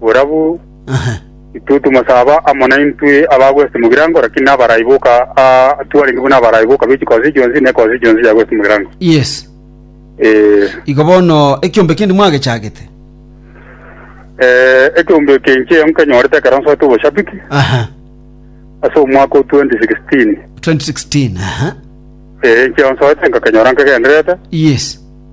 Borabu intwe tomosaba amo naintwe abagwesete mogirango, lakini nabarai boka aa twarenge buna abarai boka be chikosi chionsi na ekosi chionsi yagwesete mogirango. Yes. Ee, Igo bono ekiombe kende mwagechagete. eh, ekiombe eke inche nkenyorete ekero nsoete oboshabiki Aha. ase omwaka o 2016. 2016. Aha. Eh, inche nsoete nkakenyora nkegendererete. Yes.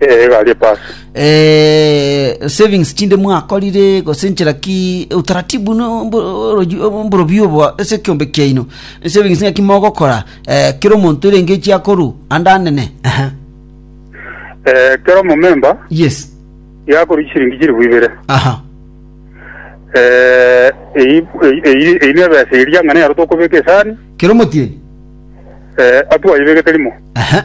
Eh, egari epasi. eh, savings chinde mwakorire gose nchera ki utaratibu no mbo- oroji- obo- mborobio obo ase ekiombe kiaino savings ng'aki mogokora eh, kera omonto erenge echi akoru ande anene Aha. Eh, kera omomemba yes yakori chiringi chiribu ibere. aha Eh, eyi eyi- eyi- eyi nebesa eria ng'ana yaro tokobeka esani, kera omotieni eh, atwaibegete rimo. Aha.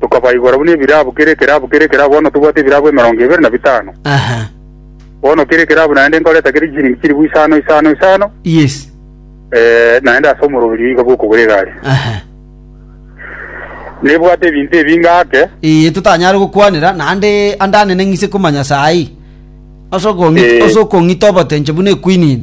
tokabaigora buna ebirabu, kera ekerabu, kera ekerabu, bono tobwate ebirabu emerongo ebere na bitano. Aha. Bono kera ekerabu naende nkoreta kere chiringi chilifu isano isano isano, Yes. eh, naende ase omoroberio iga bw'okogora egari. Aha. Nebwate ebinto ebi ngake, Ee, totanyare gokwanera naende ande anene ng'ise komanya saa ii. Ase okong'ita, Eh. ase okong'ita obotenche buna equinine.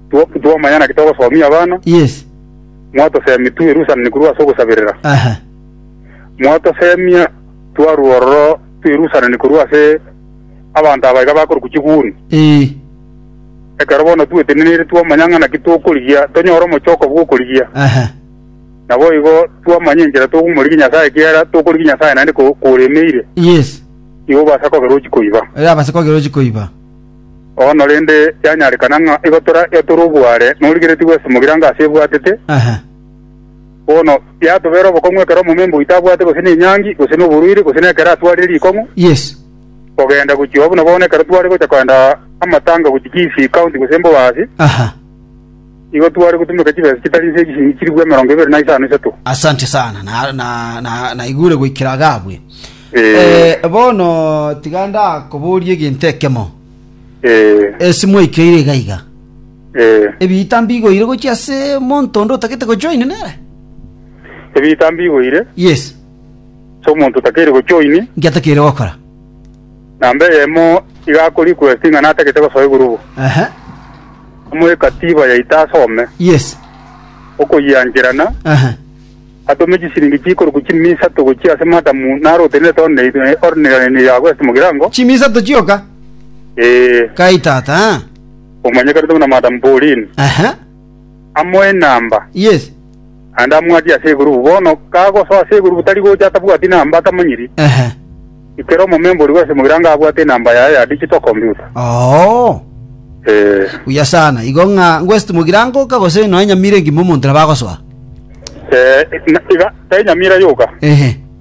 two- twomanya naki togosomia abana, Yes. mwatosemia twerusanani korwa ase ogosaberera. Aha. Mwatosemia twarwa ororo twerusanani korwa ase abanto aba iga bakorokwa chiguni. Ee. Ekero bono tweteneneire twomanya ng'a naki tokorigia, tonyore omochoko bw'okorigia. Aha. Naboigo twamanya enchera togomorigia Nyasae ekiagera tokorigia Nyasae naende ko- koremeire, Yes. igo obasa kogera ochikoiba. Erabase kogera ochikoiba. Bono rende, yanyarekana ng'a igo toraiyo tore oboare norigeretie gwesomogira anga ase ebwatete, bono yatobera obokong'u ekero omomemba oito abwate gose nenyangi, gose noborwaire, gose nekero atwarire rikong'u, kogenda gochia oo buna bono ekero tware gocha kogenda amatanga gochia Kisii County gose Mbobasi. Igo tware gotumeka chibesa chitari inse chishilingi chilifu emerongo ebere na isano isato. Asante sana na, na, na, naigure goikera agabwe Eh. Eh, bono tiga ndakoborie egento ekemo Eh, esi mwaikeire iga iga eh. ebiita mbigoire gochia ase monto onde otagete gojoin nere Ebiita mbigoire, yes so omonto otakeire gochoini, ngiatakeire gokora Namba eyemo iga akore ikwesi ng'a natagete gosoa egurubu. Ehe. Omoekatiba yaito asome, Yes. okoyiancherana, Ehe. atome chisiringi chikorokwa chimia isato gochia ase madamu narotenenete orne- ornirani ya West Mugirango. Chimia isato chioka? Ee, Kai tata. eh? omanyekanete buna Madam Pauline. Ehe. amo enamba. Yes. Naende amwatie ase egurubu. Bono kagosoa ase egurubu tari gocha atabwati namba atamanyiri. Ehe. Ekero omomemba oria bw'esemo ira anga abwate enamba yaye ya digital computer. Oo. Eh. Buya sana. Igo ng'a ngwesiti mogira ngoka gose nonya mira engima omonto nabo agosoa. Eh, na- iga, tari nyamira yoka. Ehe.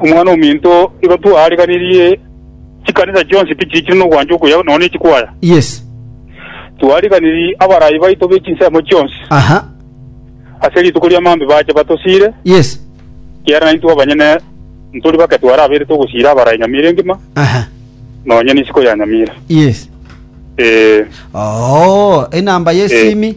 Omwana-o-ominto igo twaariganirie chikanisa chionsi pi chiichire nogwancha okuya nonya ne chikwaya. Yes. Twaariganirie abarai baito be chinsemo chionsi. Aha. Ase rituko ria maambia bache batosiire. Yes. Ekiagera naintwe abanyene ntori bake twarabeire togosiira abarai nyamira engima, Aha. nonya nisiko ya nyamira. Yes. Ee. Oo, enamba Eh. y'esimi.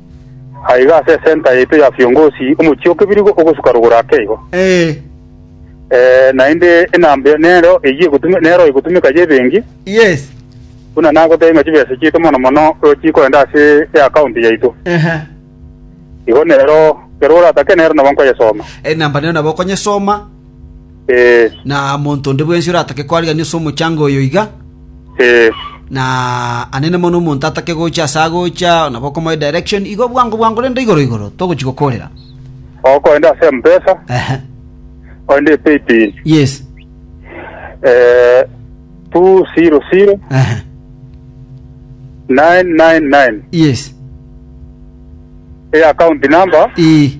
Aiga ase esenta yaito ya Fiongosi, omochie o kebirigo ogosuka rogoro ake igo. Ee, Ee, naende enamba nero eyio egotume- nero egotumeka y'ebenki, yes. buna nagotebia ng'a chibesa chiaito mono mono chikoenda ase eakaonti yaito. Ehe. Igo nero, ekero oratake nero nabo nkoyesoma. Enamba nero nabo okonyesoma. Ee. Na monto onde bwensi oratake koarigereria ase omochango oyo iga, Ee. na anene mono omonto atake gocha ase agocha, nabo okomoe direction, igo bwango bwango rende igoro igoro, togochi gokorera. Okorende ase Mpesa, Ehe. korende paybill, Yes. eh, 200 Ehe. 999. Yes. Eye account number Ii.